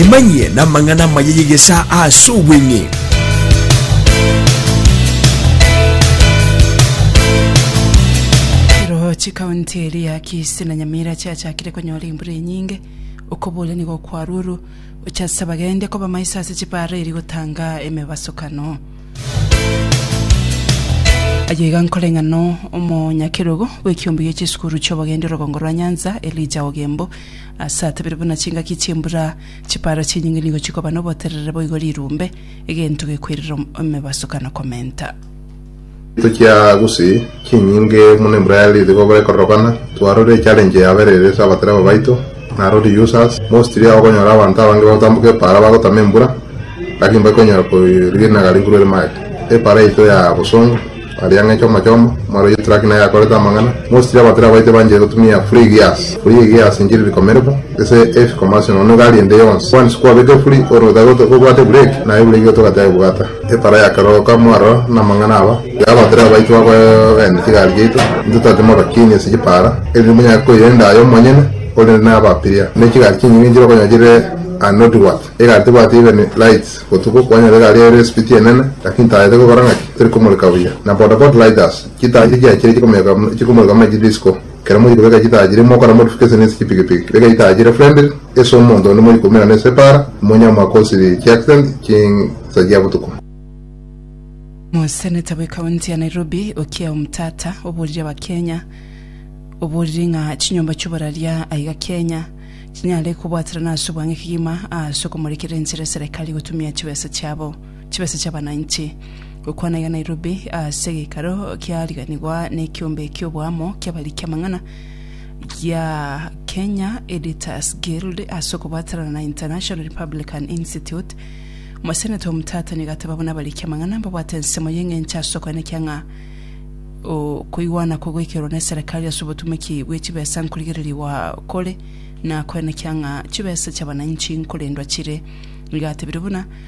emanyie n'amang'ana amaya y'egesa ase obweng'e Ekero chikaunti eria ya Kisii na Nyamira chiachakire konyora embura enyinge, okoboria nigo kwarurwu gocha ase abagende koba maiso ase chipaara eria gotanga emebasukano. Ayio iga nkore ng'ano omonyakerogo bw'ekiombe gie chisukuru chi'obogendi orogongo rwa Nyanza, Elijah Ogembo, ase atabire buna chingaki chi'embura chipara chinyinge nigo chikoba noboterere boigo rirumbe, egento gekoirera emebasokano komenta. Egento kia gose. Chinyinge buna Embraer riiri kobora ekororokana, twarorire echallenge yabeire ere ase abatereba baito, narorie users, mostly ao okonyora abanto abange bagotamboka epaara bagotama embura, lakini mbari konyara koriginaga riguru ere maega. Epaara yaito ya bosongo, aria ng'a echoma choma, mwarorie truck naye yakorete amang'ana, mostly abatereba baito banchaire gotumia free gears, free gears nchiri rikomerebo ase heavy commercial nonya egari ende yonsi, once kwabeka efuri ore otari kobwata ebureki, naye ebureki igo togateba ebwata. Epara ya kera oka mwarora na amang'ana aba, yabotera abaitwa abo bene chigari chiaito, intwe tote maba kini ase chipara, erinde monyare koirenda aye omonyene ore na abapiria. Ne chigari chinyinge nchire okonyora chire a Northward, egari tebwati even lights, botuko kwanyora egari ere espiti enene lakini taa yaito egokora ng'aki, terikomoreka buya, na bodaboda light us, chitaa chiria chiachire chikomoyoka chikomoreka buna chidisco. Ekero moiri kobeka chitaajiri, mokore motufu gese nensi chipigipigi, beka itaajiri friendly ase omonto onde moiri koumerana ase epaara, monya mwakosiri chiaccident chinsa chia botuko. Omoseneta bwe county ya Nairobi Okiya Omtata oborire abakenya oboriri ng'a chinyomba chioboraria aiga Kenya chinyare kobwaterana ase obwange kegima aase okomorekera enchera eserekari gotumia chibesa chiabo. Chibesa chi'abananchi. Gokwana iga Nairobi ase egeikaro kiariganigwa nekiombe ki'oboamo ki'abariki amang'ana gia Kenya Editors Guild ase okobwatanana na International Republican Institute. Omoseneta omotata nigo agateba buna abariki amang'ana mbabwate ensemo y'eng'encho ase okoenekia ng'a okoigwana kogoikerwa ne serikali ase obotumoki bwe chibesa nkorigererigwa kore na koenekia ng'a chibesa chi'abananchi nkorendwa chire. Nigo atebirie buna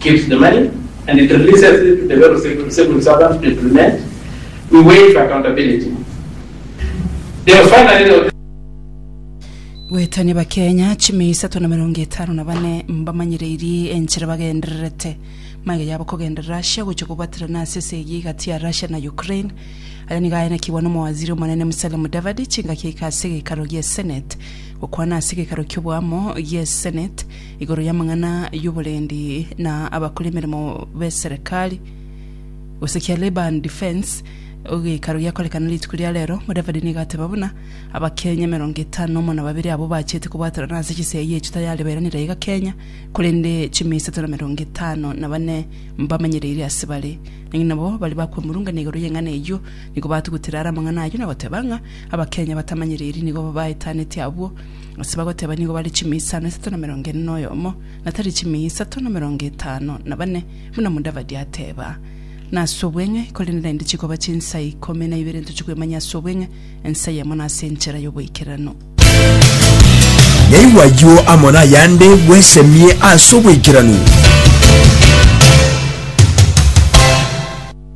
keeps the money and it releases it to the various civil servants to implement, we waive accountability. Then finally there was. Goetania Abakenya chimia isato na emerongo etano na bane mbamanyereirie enchera bagendererete magega yabo kogenda Russia gochia kobaterana ase ase eyio egati ya Russia na Ukraine. Aya nigo aenekigwa n'omowaziri omonene Musalia Mudavadi chingaki aika ase egekaro gie Senate gokwana ase egekaro ki'oboamo gie Senate igoro y'amang'ana y'oborendi na abakora emeremo b'eserekari. Gose kia Labour and Defence, egekaro giakorekana rituko ria rero, Mudavadi nigo ateba buna Abakenya emerongo etano nomo na babere abwo bachete kobwaterana ase chisegi eye chitayare beranire iga Kenya, korende chimia isato na emerongo etano na bane mbamenyereire ase bare. Naki nabo baria bakwemurungania igoro y'eng'ana eyio nigo batugutire are amang'ana ayio na goteba ng'a Abakenya batamanyereiri nigo baetaneti abwo Ase bagoteba nigo bare chimia isano isato na merongo ene na oyomo, na tari chimia isato na merongo etano na bane, buna Mudavadi ateba. Na ase obweng'e, korende naende chikoba chinsa ikomi na ibere ntoche kwemanyia ase obweng'e, ensa eyemo na ase enchera y'oboikeranu. Yaigwa ayio amo nayande bwesemie ase oboikeranu.